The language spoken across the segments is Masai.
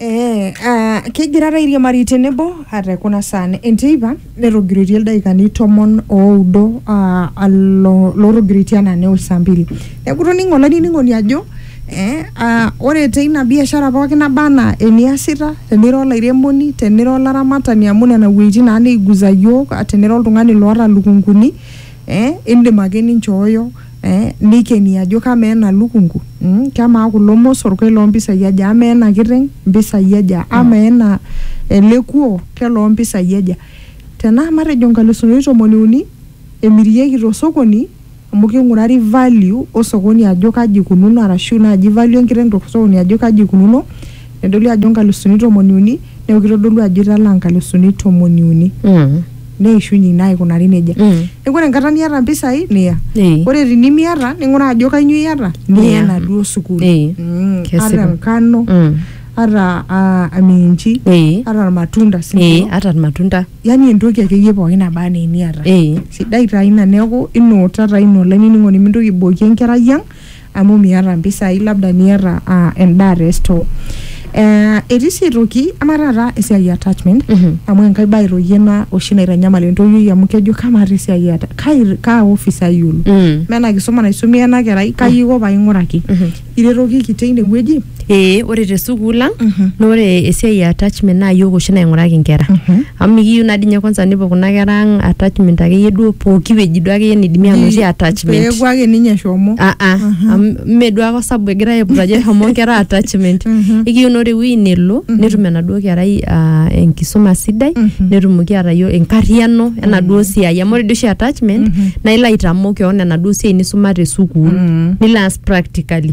Ee uh, kegira airiamari tenebo ate kuna saan enteipa netogiroitie ildaikani tomon oudo uh, alo lotogiroitie anaa neo saa mbili neeku toning'o olainining'oni ajo eh, uh, ore teina biashara pookin naba anaa eniasita tenira olairemoni tenira olaramatani amu nena wuejitin naa naiguza yiok tenira oltung'ani loota ilukunguni. eh, indim ake ninchooyo eh, nikeni ajo kamaa ena lukungu mm, kamaa kulo mosor keloo mpisai aja amaa ena kiteng mpisai aja amaa ena ele kuo keloo mpisai aja tenaa matejo nkalusuni tomoni uni emirieki tosokoni amu king'urari value osokoni ajo kaji ikununo arashu naaji value enkiteng tosokoni ajo kaji ikununo nedoli ajo nkalusuni tomoni uni neeku kitodolu ajo italaa nkalusuni tomoni uni Mm. neishunye ina aikunari nejia Mm. neeku ore enkata niata mpisai niya Eh. ore tinimiata ning'uraa ajo kainyoo iata niya Niya. enaduo sukuul Eh. Mm, Kesipa. ata enkano Mm. ata ah, aminji Eh. ata irmatunda si Eh, ndio. ata irmatunda yani entoki akeyie pookin naba anaa eniata Eh. sidai taa ina neeku inuuta taa ina olainining'oni mintoki aibokie enkerai ang amu miata mpisai labda niata uh, endaa te store uh, etii sii aitoki ama taata esiai e attachment mm -hmm. amu enkae bae toki ena oshi naitanyamal entoiwuoi amu kejo kamaata esiai ata kai kaa office ayiolo mm. mena kisuma naisumia ena kerai kai iko paing'uraki mm -hmm. iretokiki teine wueji ee ore te sukuul ang na ore esiai e attachment naa yiok oshi nainguraki nkera amu mikiyieu naa dii ninye kwanza nepuo kuna kera ang attachment akeyie duo pooki wueji duo akeyie nidimi anotie attachment peeku ake ninye eshomo Ah, ah. Amu mme duo ake osabu egirae aiput ajo eshomo nkera attachment ekiyieu naa ore ewueji nelo netum enaduo kerai ah, enkisuma sidai netumoki atayio enkariano enaduo siai amu ore dii oshi attachment naa ilo aitamok kewon enaduo siai nisuma te sukuul nilo aas practically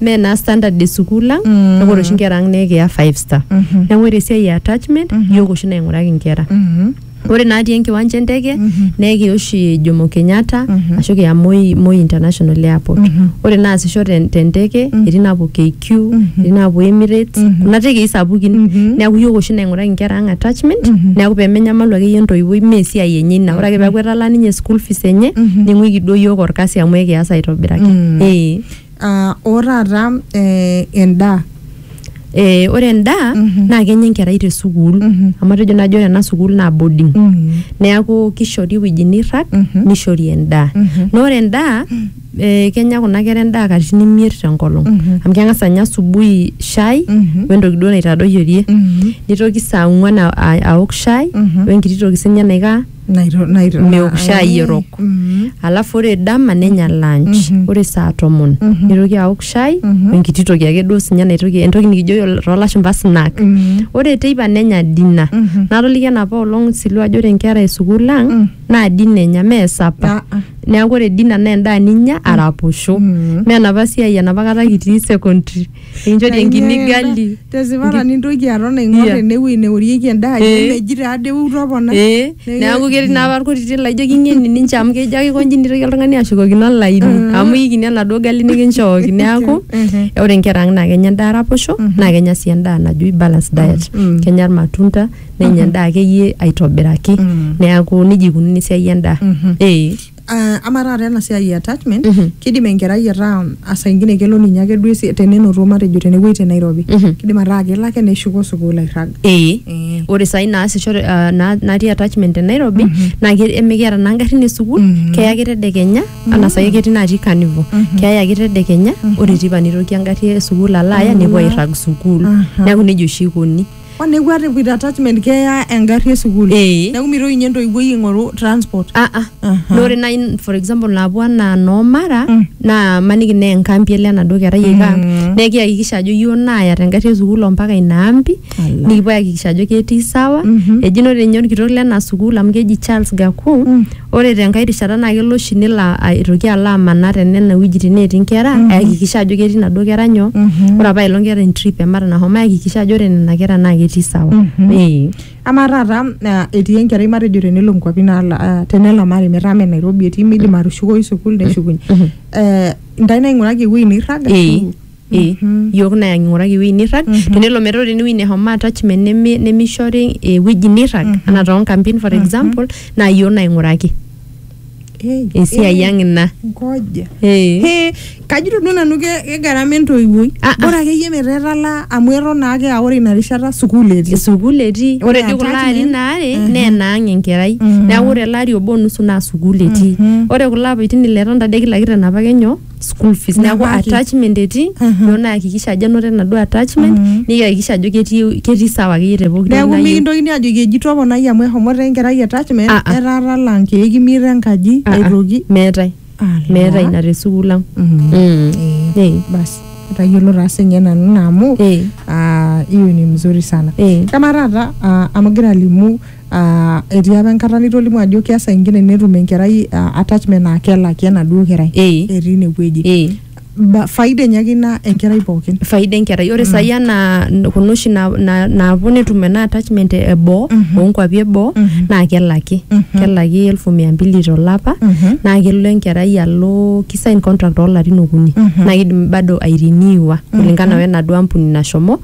mee naa standard esukuul ang Mm. neku ore oshi nkera ang nekiya five star Mhm. neku ore esiai e attachment Mhm. yiok oshi naing'uraki nkera Mhm. ore natii enkiwanja enteke Mhm. nekiya oshi jomo kenyatta Mhm. ashu kiya moi, moi international airport Mhm. ore naasisho ten- tenteke Mhm. etii naapuo kq Mhm. etii naapuo emirates Mhm. kuna tekei sapukin Mhm. neeku yiok oshi naing'uraki nkera ang attachment Mhm. neeku pemenyamalu akeyie entoiwuoi mee esiai enye ina ore ake peeku etalaa ninye school fees enye Mhm. ning'uiki duo yiok orkasi amu ekias aitobiraki Mm. ee uh, otaata eh, endaa Eh, ore endaa mm -hmm. naa kenya enkerai te sukuul mm -hmm. amu atejo najo ore ena sukuul naa boarding mm -hmm. neaku kishori ewueji nirrag mm -hmm. nishori endaa mm -hmm. naa ore endaa mm -hmm. eh, kenya kuna kera endaa katitin imiet tenkolong mm -hmm. amu keng'as anya asubuhi shai mm -hmm. wentoki duo naitadoyiorie mm -hmm. nitoki saa ong'uan aok shai mm -hmm. wenkiti toki sinye naikaa Naito- naito- meok shai eh, erok mhm, alafu ore dama nenya lunch Mhm. ore saa tomon Mhm. nitoki aok shai Mhm. enkiti toki ake duo sinye naitoki entoki nikijo toolashumba snack mhm, ore teipa nenya dina mhm. natoliki enapa olong silua ajo ore nkera esukuul ang Mm. naa dina enya mee sapa Ah, ah, neeku ore dina naa endaa ninya araposho mhm. mee enapa siai enapa kata kitii secondary Inchori enkini gali. Tesipata nintoki aton aing'or Iya. enewueji neorieki endaa ajo Eh. meji taa dei eutu opona. Ee, Nei- neeku ketii naa apa irkutiti laijo king'eni ninche amu kejo ake konji nitoki oltung'ani ashukokino olaini amu ikini enaduo gali nikinchooki neeku ore inkera ang naa kenya endaa raposho naa kenya sii endaa naji balance diet kenya irmatunda nenya endaa akeyie aitobiraki neeku nejia ikununo esiai endaa ee Ah, ama taata ena siai e attachment Mhm. kidim enkerai ataa asa ingine kelo ninye ake duo esi- tenenoto matejo tenewueji te Nairobi Mhm. kidim ataa kelo ake neshuko sukuul airrag ee Eh. ore sai naasisho ah, na- natii attachment te nairobi naa ke- emikiata naa ngarrin esukuul Mhm. keya ake tedekenya anaa sai ketii natii carnival keya ake tedekenya ore tipa nitoki engarri esukuul alo aya nepuo airrag sukuul Aha. neeku nejia oshi ikoni Onekwa te with attachment keya engarri e sukuul. Eh. Neeku mitoki ninye entoiwuoi aing'oru transport. Ah, ah. Aha. Naa ore nai for example naapuo anaa noo mara naa maniki naa enkampi elo enaduo kerai aiko ang naa ekiyakikisha ajo iyioo naaya tengarri esukuul ompaka ina ampi Ala. nikipuo ayakikisha ajo ketii sawa eji ore ninye orkitok lena sukuul amu keji Charles Gaku Ore tenkae rishata naa kelo oshi nelo a- aitoki alo amanaa te nena wuejitin netii nkera ayakikisha ajo ketii naduo kera nyoo. Ore apa ailong keeta entrip e mara nahomo ayakikisha ajo ore nena kera naa ketii sawa. Ee. Amaa taata ah, etii enkerai matejo tenelo nkuapi naala- ah, tenelamari metaa me Nairobi etii midim atushukoyu sukuul neshukunye. Eh, Intae naing'uraki ewuei nirrag Ee. ashu Eh, yiok naa king'uraki ewueji nirrag tenelo metaa ore enewueji neshomo attachment neme- nemishori ewueji nirrag anaa toonkampin for example naa yiok naing'uraki Eh, esiai eh, ang ina ngoja. Eh. Eh, kajito duo nanu ke- kegarama entoiwuoi Ah, ah. bora akeyie metaa etalaa amu eton naake aa ore ina rishata sukuul etii sukuul etii Ore ore dii kulo attachment, arin aare mhm. naa enaang enkerai Mhm. neeku ore ele ari obo nusu naa sukuul etii Mhm. ore kulo apaitin ile etonta de kila kitu enapake nyoo school fees neeku Nebaiki. attachment etii Mhm. duo naakikisha ajo enoto enaduo attachment Mhm. nikihakikisha ajo ketii ketii sawa akeyie te pooki toki neeku nayieu. mikintokini ajoki eji toponai amu ehomoto enkerai attachment Ah, ah. etaa talaa nkeek imiet enkaji Ah, ah. aitoki meetae Ala. meetae ina te sukuul ang Mhm. Mm. Eh, basi etayiolo taa sinye nanu naa amu eh, ah, hiyo ni mzuri sana eh. kama taata ah, amu gira alimu Ah, etii apa enkata nitolimu ajo keas saa ingine netum enkerai ah, attachment naa kelaki enaduo kerai Eh. etii inewueji Eh. Ba- faida enye ake ina enkerai pookin faida enkerai ore sai anaa n- kuna oshi na- na- naapuo netum ena attachment e- eboo oonkuapi eboo naa kelaki kelaki elfu mia mbili tolapa naa kelo enkerai alo kisain contract oolarin okuni naa kidim bado airiniwa kulingana wenaduo ampuni nashomo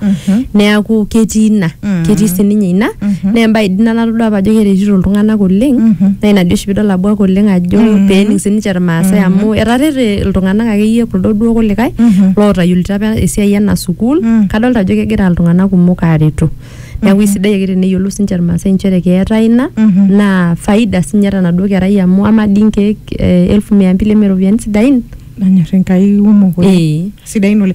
neaku ketii ina Mm. ketii sininye ina Mhm. naa embae dii ina natodua apa ajo keretito iltung'anak oleng Mhm. naa ina dii oshi pidol abuak oleng ajo Mhm. peening sininche irmaasai amu etarete iltung'anak akeyie kuldo duo kulikae Mhm. lootayiolito apa esiai ena sukuul Mm. kadolta ajo kegira iltung'anak kumok aaretu neeku isidai ake teneyiolou sininche irmaasai inchere keetae ina Mhm. naa faida sinye tenaduo kerai amu ama dii nkeek eh, elfu mia mbili eme iropiyiani sidain nanyor enkai kumok oleng ee sidain oleng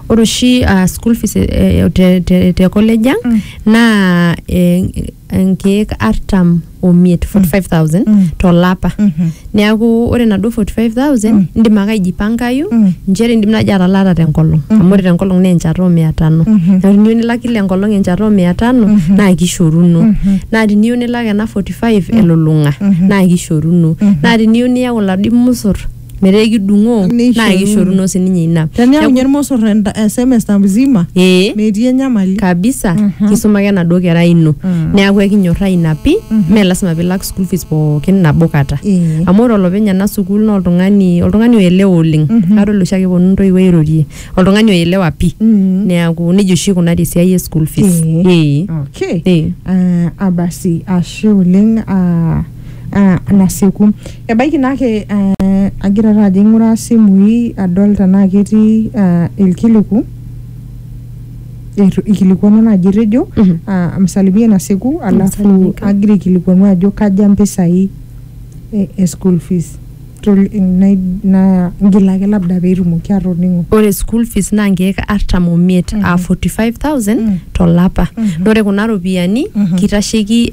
Ore oshi uh, school fees eh, te, te, te college ang mm. naa eh, nkeek artam omiet 45000 mm. tolapa mm -hmm. neaku ore naduo 45000 mm. indim ake aijipankayu mm. nchere indim naaji atalaata tenkolong mm -hmm. amu ore tenkolong naa enchata omia tano mm -hmm. neaku tiniyieu nilak kila enkolong enchata omia tano mm -hmm. naa kishoruno mm -hmm. naa tiniyieu nilak ena 45 mm. elulung'a mm -hmm. naa kishoruno mm -hmm. naa tiniyieu niyau iladuo musor metaa ekidung'oo naa Neishoruno. kishoruno sininye ina Teniaunye Neeku- irmosor semester mzima ee metii enyamali. kabisa Mhm. kisuma ake enaduo kerai ino Mm. neeku ekinyorraa ina pi mee lasima pilak school fees pookin nabo kata Ee. amu ore olopeny ena sukuul naa oltung'ani oltung'ani oelewa oleng Mhm. adol oshi ake eponu intoiwuo airorie oltung'ani oelewa pi Mm. neeku nejia oshi ikunari esiai e school fees Ee. Ee. Okay. Ee. Ah, abasi ashe oleng ah, ah, nasieku ebaiki naa ake eh, agira taa ajo aing'uraa isimui adol tenaa ketii ah, ilkiliku eitu- ikilikuanu naaji etejo Mhm. ah, msalimie nasieku alafu Msalimika. agira aikilikuanu ajo kaja mpisai e, e school fees naa ngil ake labda petumoki atoningo. Ore school fees naa nkeek artam omiet aa 45,000 to lapa. Naa ore kuna ropiyiani kitasheki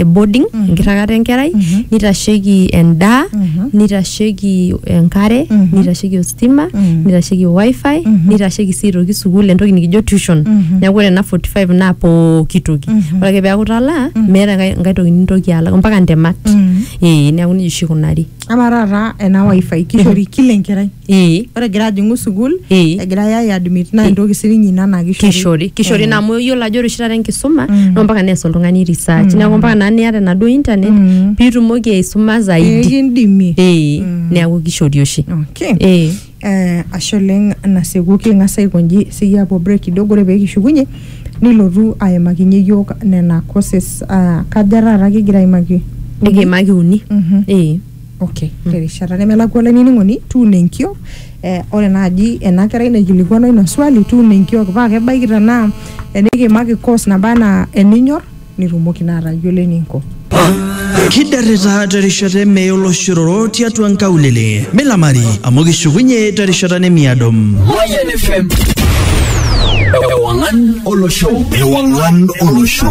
boarding enkiragata enkerai, nitasheki endaa, nitasheki enkare, nitasheki ositima, nitasheki wifi, nitasheki sii aitoki sukuul entoki nikijo tuition. Neeku ore ena 45 naa pooki toki. Ore ake peeku italaa meeta enkae toki nintoki alak mpaka ntemat. ee neeku nejia oshi ikunari ama taata ena wifi kishori kila enkerai ee ore egira ajing'u sukuul Ee. egirai ai admit naa entoki sininye ina naa kishori kishori naa amu iyiolo ajo ore oshi taata enkisuma Mm. naa mpaka nees oltung'ani research neeku mpaka naa niata enaduo internet Mm. piitumoki aisuma zaidi ekindimi ee neeku kishori oshi okay ee Eh, ashe oleng nasieku king'as aikonji siyie apuo break kidogo ore peekishukunye nilotu aimakinye iyiok nena courses uh, kaja taata kigira aimaki nikiimaki uni Mhm. ee okay terishata nemelakua olainining'oni tuuno enkiok eh, ore naaji ena kerai naikilikuanwa ina swali tuuno enkiok paa kebaiki tenaa enikiimaki course naba anaa eninyor nitumoki naa atayiolo eninko. Kidarrita terishata emee oloshororo tiatua nkaulele. Milamari amu kishukunye terishata nemiado. Mayian FM. Ewang'an olosho. Ewang'an olosho.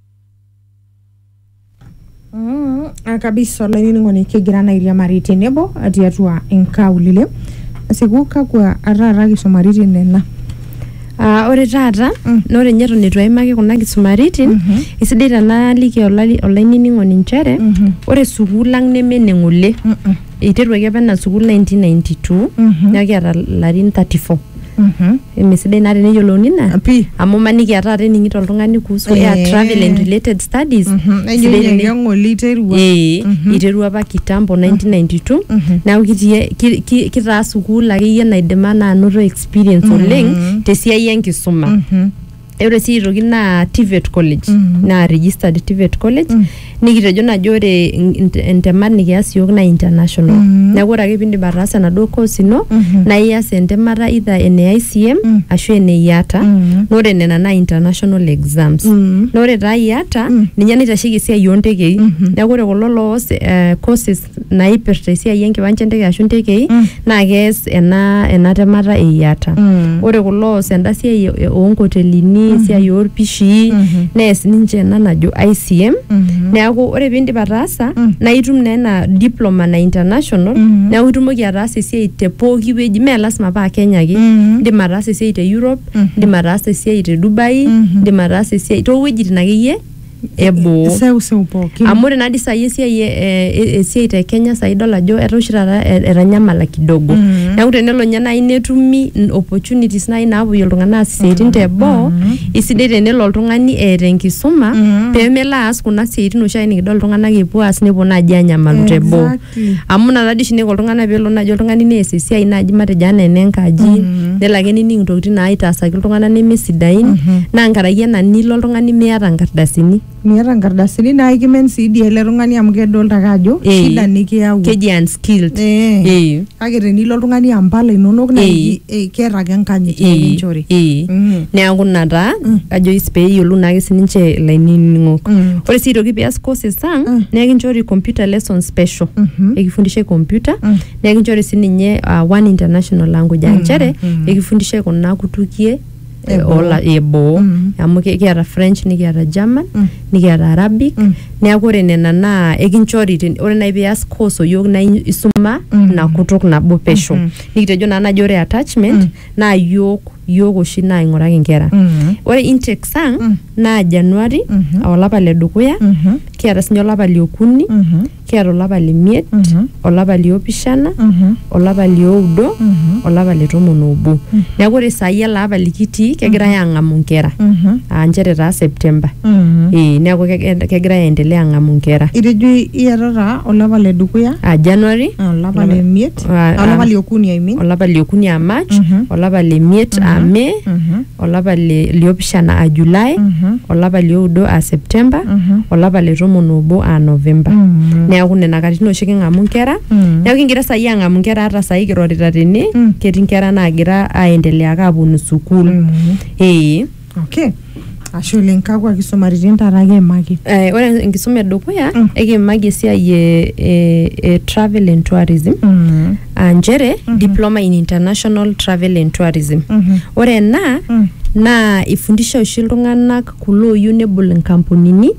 Mm, ah, kabisa olainining'oni kigira naa airiamari tenebo tiatua inkaulele asiku kakwa taata kisumaritin nena Ah, ore taata Mm. na ore nye eton itu aimaki kuna kisumaritin Mhm. isidai tenaaliki olali- olainining'oni nchere Mhm. ore sukuul ang neme ene ng'ole Mm-mm. eiteruaki apa ena sukuul 1992 Mhm. neeku kiata larin 34 mesidai naa teneyiolouni ina Pi. amu maniki aa taata ening'ito oltung'ani kuhusu Eh. air travel and related studies Mhm. Nejo sidai ninye teni- keng'oli iterua. Eh, iterua apa kitambo 1992 neeku kitii- ki- ki- kitaa sukuul akeyie naidim anaa anoto experience oleng tesiai enkisuma ore sii aitoki naa TVET college naa registered TVET college nikitejo najo ore in- in- intemat nikias iyiook naa international neeku ore ake piindip ataasa enaduo course ino naa ias entemata either ene ICM ashu ene IATA naa ore nena naa international exams naa ore taa IATA ninye naitasheki esiai oontekei neeku ore kulo loos eh, courses naipirta esiai enkiwanja enteke ashu ntekei Mm. naa kees ena ena temata e IATA. Mm. Ore kulo oos enda siai e- e- oonkotelini, esiai oolpishii, Mhm. nees ninche ena najo ICM. Mhm. Neaku ore piindip ataasa Mm. naa itum naa ena diploma na international Mhm. neaku itumoki ataasa esiai te pooki wueji mee lasima paa Kenya ake. Mhm. Indim ataasa esiai te Europe, Mhm. indim ataasa esiai te Dubai, Mhm. indim ataasa esiai toowuejitin akeyie eboo. Seuseu pookin. Amu ore nadii sai esiai e- e- esiai te Kenya sai idol ajo etaa oshi taata e- etanyamala kidogo. Mhm. Neeku tenelo nye nai netumi n- opportunities nai napuoyie iltung'anak aas isiaitin te boo, isidai tenelo oltung'ani eeta enkisuma Mhm. pemelo aas kuna siaitin oshiake nikidol iltung'anak epuo aas nepuo naji anyamalu te boo. Exactly. amu ina tadii oshi naiko iltung'anak peelo naaji oltung'ani nees esiai naaji matejo anaa enenkaji nelo ake nining intokitin naitaasaki iltung'anak nemesidain naa nkaraki ena nilo oltung'ani miata nkardasini miata nkardasini naa ikimen sii dii ele tung'ani amu kedolta ake ajo Eh. shida nikiyawua keji unskilled Eh. Eh. kake tenilo oltung'ani ampala inonok naa Eh. iki- Eh, keeta ake enkanyit Ee, nikinchori. ee. Mm. neeku ina taa ajo is- pee eyiolou naake sininche ilainining'ok Mm. ore sii aitoki pias courses ang Mm. naa ekinchori computer lesson special Mhm. ekifundishae computer Mm. naa ekinchori sininye uh, one international language aa nchere ekifundishae kuna kutukie eh, Eboo. ola- eboo Mm. amu ki- kiata french nikiata german Mm. nikiata arabic Mm. neeku ore nena naa ekinchori ten- ore nai pias course oyiok naa in- isuma Mm. ina kutuk nabo pesho Mhm. nikitejo naa naji ore attachment Mm. naa yiok yiok oshi naing'uraki nkera Mhm. ore intake sang Mm. naa januari Mhm. aa olapa le dukuya Mhm. kiata sinye olapa liokuni Mhm. Kiata olapa le miet, olapa li opishana, olapa li oudo, olapa le tomon obo. Neeku ore saai ele apa likitii kegirai aang'amu nkera aa nchere taa September. Ee neeku keg- kegirai aendelea aang'amu nkera. Itejo iatata olapa le dukuya, Aa January, olapa le miet, Ah, ah. olapa le okuni I mean. olapa li okuni aa March, olapa le miet aa May, olapa li- liopishana aa July, Mhm. olapa lioudo aa September, Mhm. olapa le tomon obo aa November. Mm. Neaku nena katitin oshi king'amu nkera. Mm. Neaku kigira saai ang'amu nkera ata saai kirorita tene, Mm. ketii nkera naagira aendelea ake aaponu sukuul. Mm. Ee. Okay. Ashe oleng kakwa kisumaritin taata kiimaki? Eh, ore enkisuma edukuya Mm. ekiimaki esiai e, e, e travel and tourism. Mm. aa nchere diploma in international travel and tourism ore ena naa ifundisha oshi iltung'anak kulo ooyieu nebol inkampunini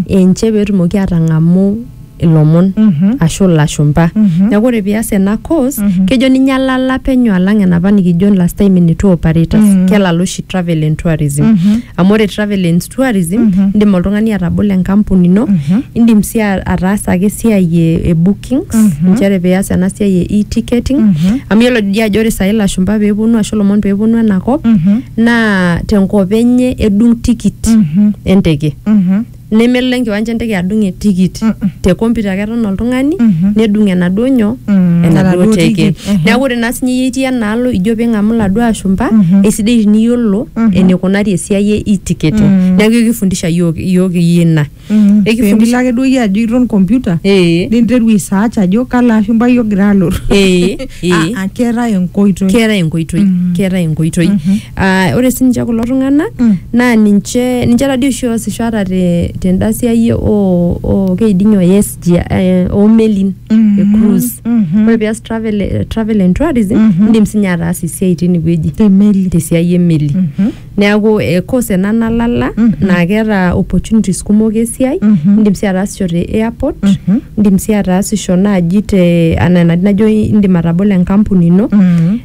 enche peetumoki atang'amu ilomon ashu ilashumpa neeku ore pias ena course kejo ninye alala penyo alang enapa nikijo last time ene tour operators kelala oshi travel and tourism amu ore travel and tourism indim oltung'ani atabolo enkampuni ino indim sii a- ataasa ake esiai e e book bookings Mhm. inchere pias ena siai e e-ticketing Mhm. amu yiolo dii ajo ore sai ilashumba peeponu ashu ilomon peeponu enakop Mhm. naa tenkop enye edung tikit Mhm. enteke Mhm. nemelo enkiwanja enteke adung etikit Mm-mm. te computer ake eton oltung'ani Mhm. nedung enaduo nyoo Mm, enaduo enaduo teke tikit, ehe. neeku ore naa sinye iyie itii enaalo ijo ping'amu iladuo ashumpa Mhm. eisidai tiniyiolo Mhm. enikunari esiai e e-ticketing Mm. neeku ekifundisha yiok yiok iyie ina Mm, Ekifundisha- pemilo ake duo iyie ajo iton computer ee ninteru aisearch ajo kalo ashumpai ogira alotu ee ee Ah, ah, keetae enkoitoi keetae enkoitoi Mm. keetae enkoitoi Mhm. Ah, ore sininche kulo tung'anak Mm. naa ninche ninche tadii oshi oosisho ata te- tenda siai oo oo keiding'e o SG eh, oo melin Mhm. e cruise Mhm. ore pias travel eh, travel and tourism Mhm. indim sinye ataasa esiai tinewueji temeli tesiai emeli Mhm. Neaku eh, course ena nalala mm -hmm. naa keeta opportunities kumok esiai mm -hmm. indim sii ataasisho te airport mm -hmm. indim sii ataasisho naaji te anaa enatii najo indim atabolo enkampuni ino mm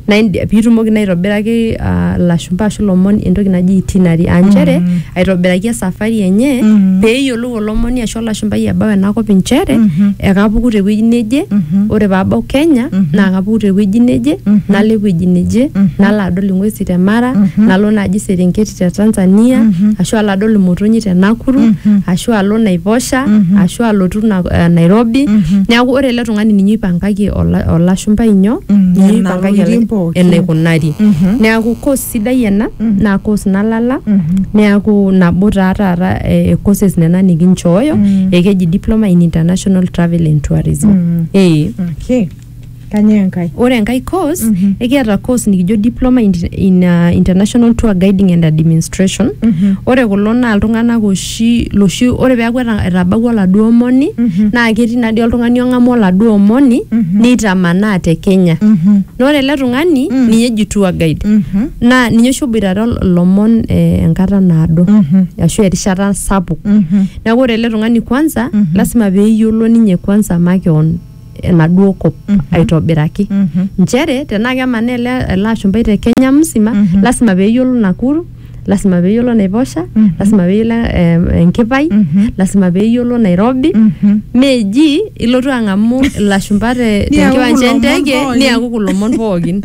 -hmm. na piitumoki naa aitobiraki uh, lashumpa ashu lomon entoki naji itinerary aa nchere mm -hmm. aitobiraki esafari enye mm -hmm. peeyiolou kelotu olomoni ashu olashumbai ebau enakop inchere Mhm. ekapuku tewueji neje Mhm. ore paabau kenya Mhm. naa kapuku tewueji neje Mhm. nalo ewueji neje Mhm. nalo adol ing'uesi te mara Mhm. nalo naaji serengeti te tanzania Mhm. ashu alo adol imotonyi te nakuru Mhm. ashu alo naiposha Mhm. ashu alotu na, eh, nairobi Mhm. neeku ore ele tung'ani ninye oipangaki ola- olashumbai nyoo Mm, ninye nena oipangaki tokitin ele- pookin. enaikunari Mhm. neeku course Sidai ena naa course nalala neaku nabo taa taata eh, eh, courses nena nikinchooyo ekeji diploma in international travel and tourism eh. Okay. Kanyoo enkae? ore enkae course ekiata course nikijo diploma in, in uh, international tour guiding and administration ore kulo naa iltung'anak oshi oshi loshi ore peaku eta- etabawua oladuo omoni Mhm. naa ketii nadii oltung'ani ong'amu oladuo omoni Mhm. neitamanaa te kenya Mhm. na ore ele tung'ani Mm. ninye eji tour guide Mhm. naa ninye oshi oboitare ol- ilomon eh, enkata naado Mhm. ashu erishata sapuk Mhm. neeku ore ele tung'ani kwanza Mhm. lasima peyiolo ninye kwanza makeon enaduo kop Mhm. aitobiraki Mhm. nchere tenaa kemanaa ele, ele ashumpai te kenya msima Mhm. lasima peeyiolo nakuru lasima peeyiolo naiposha Mhm. lasima peeyiolo eh, enkipai Mhm. lasima peeyiolo nairobi Mhm. meji ilotu ang'amu ilashumpa te- Niaku tenkiwanja kulo omon enteke pookin. niaku kulo omon pookin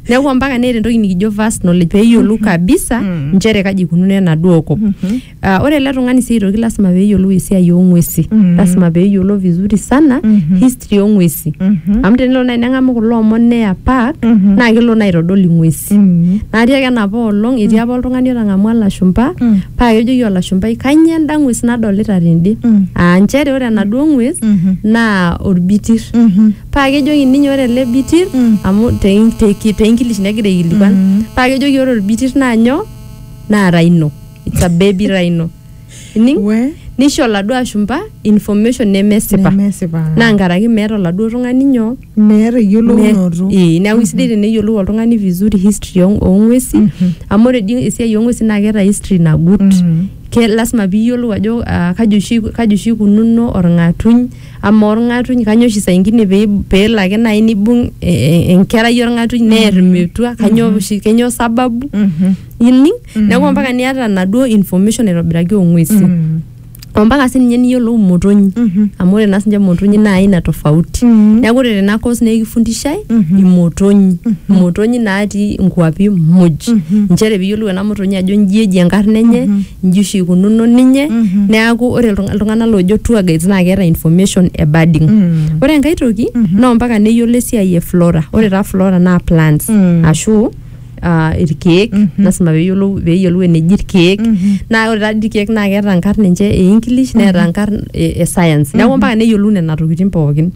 neeku mpaka neeta entoki nikijo vast knowledge peeyiolou kabisa Mm. nchere kaji ikununo enaduo kop Mhm. Ah, ore ele tung'ani sii aitoki lasima peeyiolou esiai oong'uesi Mhm. lasima peeyiolo vizuri sana Mhm. history oong'uesi Mhm. amu tenelo naaji neng'amu kulo omon neya park Mhm. naa kelo naa aitodol ing'uesi Mm. natii ake enapa olong etii apa oltung'ani otang'amua ilashumpa Mm. paa kejoki olashumpai kanyio enda ng'ues nadolita tende Mm. aa nchere ore enaduo ng'ues Mhm. naa orbitir Mhm. paa kejoki ninye ore ele bitir Mm. amu te- te- te English negira aikilikuan Mm. paa kejoki ore orbitir naa nyoo naa rhino it's a baby rhino ining we nisho oladuo ashumpa information nemesipa nemesipa naa nkaraki meeta oladuo tung'ani nyoo meeta eyiolounoto Me- ee, neeku isidai teneyiolou oltung'ani vizuri history oo- oong'uesi amu ore dii esiai oong'uesi naa keeta history nagut Mhm. ke lasima piiyiolou ajo ah, kaji oshi kaji oshi ikununo orng'atuny ama orng'atuny kanyoo oshi saa ingine pee peelo ake naaji nibung eh, eh, enkerai orng'atuny neer metua kanyoo oshi kenyoo sababu Mhm. ining neeku ompaka niata enaduo information aitobiraki ong'uesi ompaka sininye niyiolou imotonyi amu ore naa sinche imotonyi naa aina tofauti neeku ore tena course naa ekifundishai imotonyi imotonyi natii inkuapi muj inchere piyiolou ena motonyi ajo inji eji enkarna enye inji oshi ikununo ninye neeku ore iltung- iltung'anak loojo tour guides naa keeta information e birding ore enkae toki naa ompaka neyiolo esiai e flora ore taa flora naa plants ashu ah, irkeek lasima peyiolou peyiolou eneji irkeek naa ore taa dii irkeek naa keeta nkarn ninche e english neeta nkarn e, e science neeku mpaka neyiolou nena tokitin pookin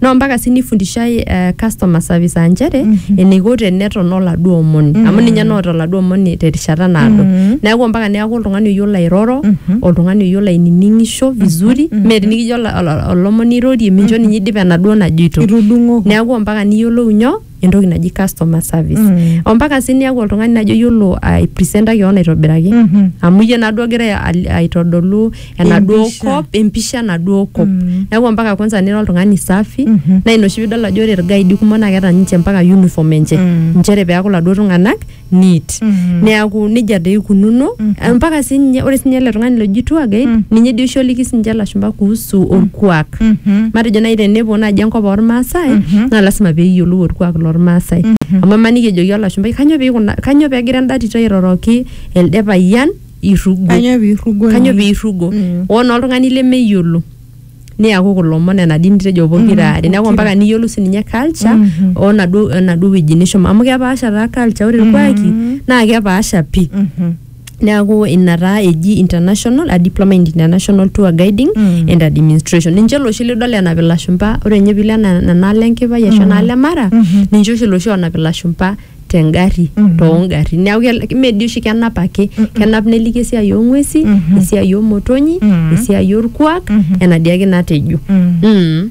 naa mpaka sii nifundishai eh, customer service aa nchere eniko teneton oladuo omoni amu ninye naota oladuo omoni terishata naado neeku mpaka neeku oltung'ani oyiolo airoro oltung'ani oyiolo ainining'isho vizuri mee tinikijo ola- ola- olomoni irorie mincho ninye idip enaduo najoito Itudung'oko. neeku mpaka niyiolou nyoo entoki naji customer service Mm. ompaka sii niaku oltung'ani najo yiolo aipresenta kewon aitobiraki Mhm. amu iyie naduo ogira al- aitodolu enaduo Empisha. kop empisha enaduo kop Mm. neeku ompaka kwanza nira oltung'ani safi Mhm. naa ina oshi piidol ajo ore irgaidi kumok naa keeta ninche mpaka uniform enche Mm. nchere peeku iladuo tung'anak neat neaku nejia doi ikununo mpaka sii ninye ore sii ninye ele tung'ani loji tour guide Mm. ninye dii oshi oliki sinche ilashumba kuhusu orkuak matejo naaji tenepuo naaji enkop ormaasai Mhm. naa lasima peeyiolou orkuak lormaasai amu emaniki ejoki olashumbai kanyoo peikuna kanyoo pegira enda tito airoroki elde payian irrugo Kanyoo piirrugo kanyoo ninye?" piirrugo Mm. oo naa oltung'ani lemeyiolo niaku kulo omon ena dini tejo pokira Mm, are neaku pokira. mpaka niyiolou sininye culture Mhm. onaduo enaduo wueji nishomo amu kepaasha taa culture ore irkuaki Mhm. naa kepaasha pii Mhm. neaku ina taa eji international a diploma in international tour guiding Mm. and administration ninche loshi lidol enap ilashumpa ore ninye piilo ena- enaalo enkipai ashu enaalo emara Mhm. ninche oshi loshi onap ilashumpa tengari Mhm. toongari neaku kel- ime dii oshi kenap ake kenap neliki esiai oong'uesi Mhm. esiai oomotonyi Mhm. esiai orkuak Mhm. ena dii ake natejo Mm. Mm.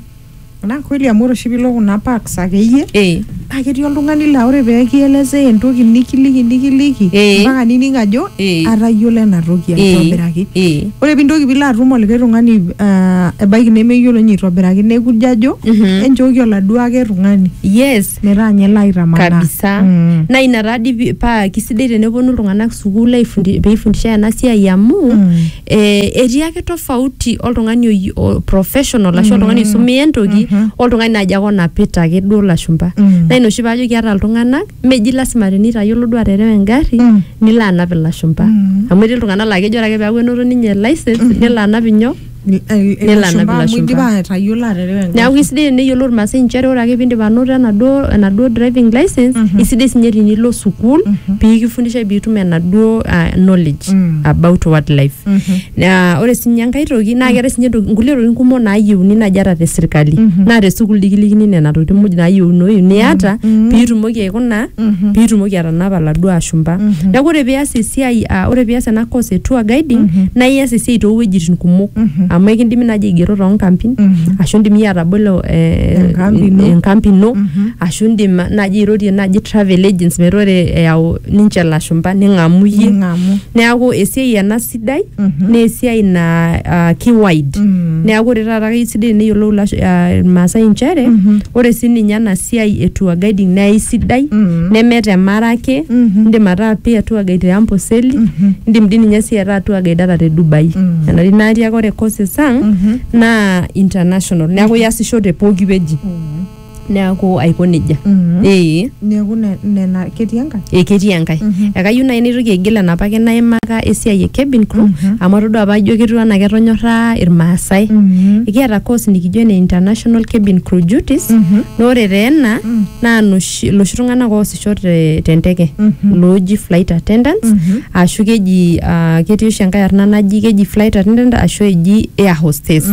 naa kweli amu ore oshi piilo kuna parks akeyie Eh. naa ketii oltung'ani laa ore pee kielezea entoki nikiliki nikiliki Eh. mpaka nining ajo Eh. atayiolo ena toki Eh. aitobiraki Eh. ore pintoki piilo atum olikae tung'ani ah, ebaiki nemeyiolo ninye aitobiraki nekujo ajo Mhm. enchooki oladuo ake tung'ani yes metaa nye laitamanaa kabisa Mm. naa ina taadi pi- paa kisidai teneponu iltung'anak sukuul aifundi- peifundishae ena siai amu Mm. eh, etii ake tofauti oltung'ani oyi- o- professional ashu oltung'ani oisumia entoki Mhm. oltung'ani naaji ake onapita ake duo lashumpa Mm. naa ina oshi paajo kiata iltung'anak meji lasima tenitayiolo duo aterewa engarri Mm. nilo anap ilashumpa Mm. amu etii iltung'anak laa kejo ore ake peeku enoto ninye license nelo anap inyoo Ni- el- el- Nelo anap ilashumba amu ilashumba. idipa atayiolo aterewa engari. neeku isidai teneyiolo irmaasai inchere ore ake piindip anoto enaduo enaduo driving license Mhm. isidai sinye tinilo sukuul Mhm. piikifundishae piitum enaduo ah, knowledge Mm. about what life Mhm. Na ore sinye enkae toki naa keetae sinye ntoki- nkulie tokitin kumok naayieuni naaji ata te sirkali Mhm. naa te sukuul dikilikini nena tokitin muj naayieunoyu niata Mhm. piitumoki aikuna Mhm. piitumoki atanapa laduo ashumpa Mhm. neaku ore pias esiai ah, ore pias ena course e tour guiding Mhm. naa ias esiai toowuejitin kumok Mhm. amu ekindimi naaji aigero toonkampin Mhm. ashu indim iyie atabolo eh, Enkampi ino. enkampi ino Mhm. ashu indim naaji airorie naaji travel agents metaa ore eyau ninche ilashumpa ning'amu iyie Ning'amu. neaku esiai ena si- sidai naa esiai naa ah, ki wide neeku ore taata keisidai teneyiolou ilash- ah, irmaasai inchere ore sininye ena siai e tour guiding naa eisidai neme temara ake indim ataa pia tour guide te Amboseli indim dii ninye sii ataa tour guide ata te Dubai enari natii ake ore courses ang naa international neeku iasisho te pooki wueji neaku aiko nejia ee neeku ne- nena ketii enkae ee ketii enkae ekayieu naaji naitoki aigil enapake naimaka esiai e cabin crew amu atodua apa ajo ketiu anaa ketonyorra irmaasai ekiata course nikijo ene international cabin crew duties naa ore taa ena naa noshi- iloshi tung'anak oosisho te- tenteke looji flight attendants ashu keji ah, ketii oshi enkae arna naji keji flight attendant ashu eji air hostess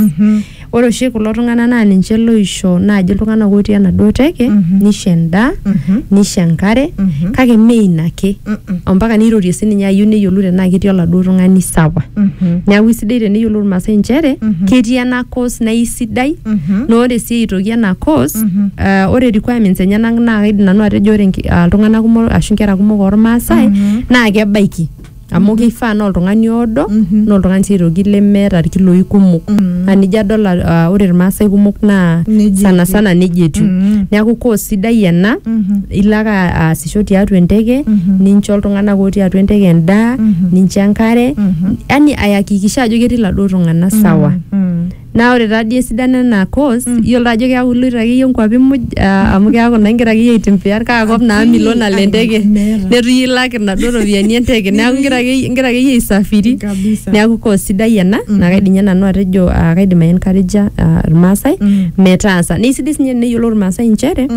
Ore oshi kulo tung'anak naa ninche loisho naaji iltung'anak otii enaduo teke Mhm. nisho endaa Mhm. nisho enkare Mhm. kake mme ina ake Mm-mm. ompaka neirorie sininye ayieu neyiolou tenaa ketii oladuo tung'ani sawa Mhm. neeku isidai teneyiolou irmaasai inchere Mhm. ketii ena course naa isidai Mhm. naa ore sii eitoki ena course Mhm. ah, ore requirements enyenak naa kaidim nanu atejo ore nki- ah, iltung'anak kumok ashu inkera kumok ormaasai Mhm. naa kebaiki amu keifaa naa oltung'ani oodo Mhm. naa oltung'ani sii aitoki lemeeta irkiloi kumok Mhm. naa nijo adol ah, ore irmaasai kumok naa Nejia sana etiu. sana nejia etiu Mhm. neeku course sidai ena Mhm. ilo ake aasisho tiatua enteke Mhm. nincho iltung'anak otii atua enteke endaa Mhm. nincho enkare Mhm. yani ayakikisha ajo ketii iladuo tung'anak sawa Mhm. Naa ore taa dii esidano ena course, iyiolo taa ajo keeku iloito akeyie nkuapi muj ah, amu keeku naa igira akeyie aitembea kaa kop naa milo nalo enteke Meeta. neitu iyie ilak inaduo ropiyiani enteke neeku igira akeyie igira akeyie aisafiri Kabisa. neeku course sidai ena naa kaidim ninye nanu atejo ah, kaidim ai encourager ah, irmaasai metaasa naa isidai sininye teneyiolou irmaasai inchere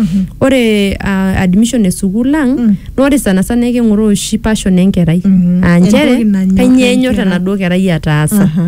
ore ah, admission e sukuul ang naa ore sana sana eking'oroo oshi passion enkerai aa Entoki nchere nanyor kanyioo enyor enkerai. enaduo kerai ataasa Aha.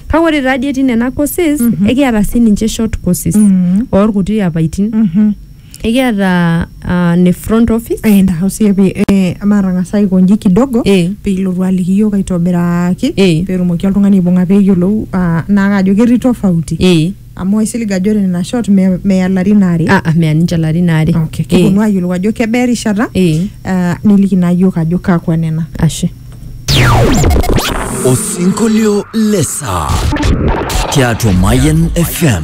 Kake ore taadii etii nena courses Mhm. ekiata sininche short courses Mm. oorkuti apaitin. Mhm. Ekiata ah, ne front office. Eh, entasho siyie pi- eh, matang'asa aikonji kidogo Eh. piilotu aliki iyiok aitobiraki Eh. peetumoki oltung'ani aibung'a peeyiolou ah, naa kajo ketii tofauti Eh. Amu aisilig ajo ore nena shot me- meya larin aare. Ah, ah, meya ninche larin aare. Okay, Eh, kiponu ayiolou ajo kebaa erishata eh, ah, niliki naa yiok ajo kakwa nena. ashe. Osinkolio le saa tiatua Mayan FM.